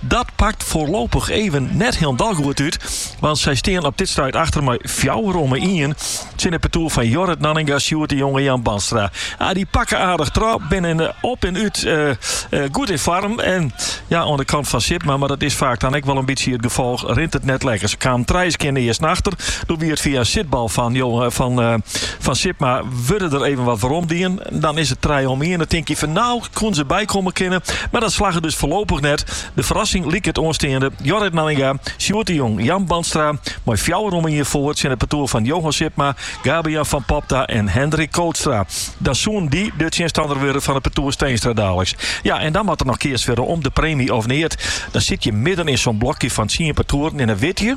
Dat pakt foarlopich even net hielendal goed út, want sy stean op dit stuit achter mei fjouwer omme ien. Tsjin it partoer fan Jorrit Nanninga, Sjoerd de Jong en Jan Bandstra. Ah, dy pakke aardich troch, binne op en út goed yn foarm. En ja, oan de kant fan Sipma, mar dat is faak dan ek wol in bytsje it gefolch, rint it net lekker. Se kamen trije skean earsten achter. Doe wie it fia in sitbal fan Sipma wurde der even wat weromdien. Dan is it trije om iene. Tinke je fan, no koene se bykomme kinne, mar dat slagge dus foarlopich net. De ferrassing liket oansteande. Jorrit Nanninga, Sjoerd de Jong, Jan Bandstra mei fjouwer om ien foar tsjin it partoer fan Johan Sipma, Gabian van Popta en Hendrik Kootstra. Dan soenen dy de tsjinstanner wurde fan it partoer Steenstra daliks. Ja, en dan moat der noch keatst wurde om de preemje of neat. Dan sit je midden yn sa'n blokje fan tsien partoeren en dan witte je,